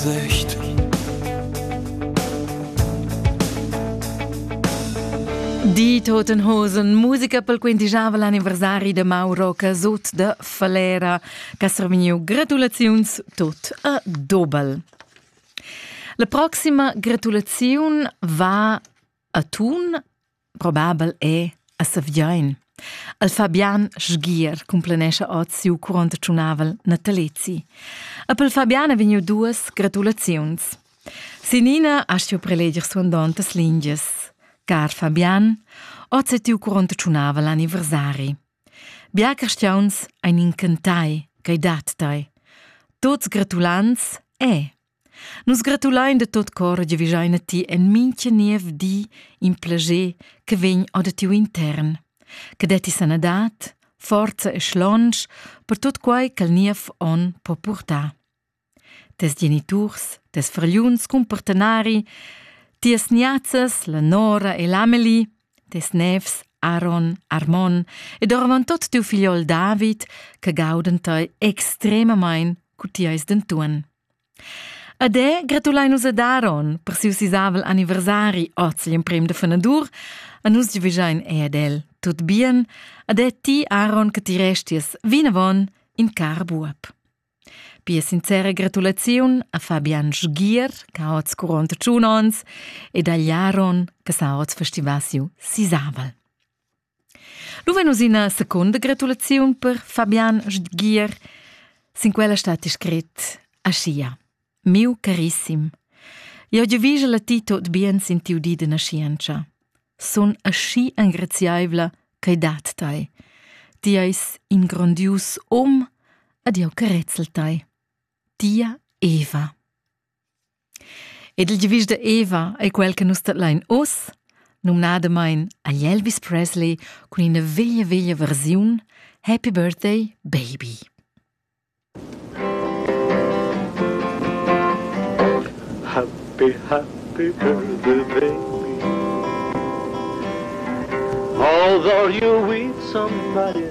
Sicht. Die Totenhosen, musica pel quintigiava l'anniversari de Mauro Casut de Falera, ch'ha serviu gratulaziuns tot a Dobel. La proxima gratulaziun va a Thun Probabel è, a Saviain. El Fabian sgier cumplanescha oz siu curont tschunavel natalezi. A pel Fabian ha vegniu duas gratulaziuns. Sinina ha stiu preleger suandontas lingias. Car Fabian, oz è tiu curont tschunavel anniversari. Bia cristiauns ein incantai, ch'ei dat tei. Tots gratulants è. Nus gratulein de tot cor che vigein a ti en mincha niev di in plager che vegn or da tiu intern. Che detti sanadad, forza e schlonsch per tot quai ch'al niev onn po purtar. Tes geniturs, tes fragliuns cun partenari, tias niazzas, la Nora e l'Amelie, tes nevs Aaron, Armon ed orvan tot tiu figliol David, che gauden tei extremamain cu ti eis dentuan. Ad e gratulein nus ad Aaron per siu sisavel anniversari oz gl'emprem da fenadur, a nus giuvegein ei ad el tut bien, ad e ti Aaron che ti resties vinavon in car buob. Pia sincera gratulaziun a Fabian Sgier, che ha oz quarantotschun onns, ed agl Aaron, che sa oz festivasiu sisavel. Lu vegn uss ina secunda gratulaziun per Fabian Stgier. Sin quella stat scrit aschia: Miu carissim, jau giovigel a ti tot bien sin tiu di de naschientscha. Sun aschi engraziaivla ch'ei dat tei. Ti eis in grondius um, ed jeu carezzel tei. Tia Eva. Ed il giavisch da Eva ei quel che nus tadlein oz, numnadamain agl Elvis Presley cun ina veglia veglia versiun Happy Birthday Baby. Happy, happy birthday, baby. Although you with somebody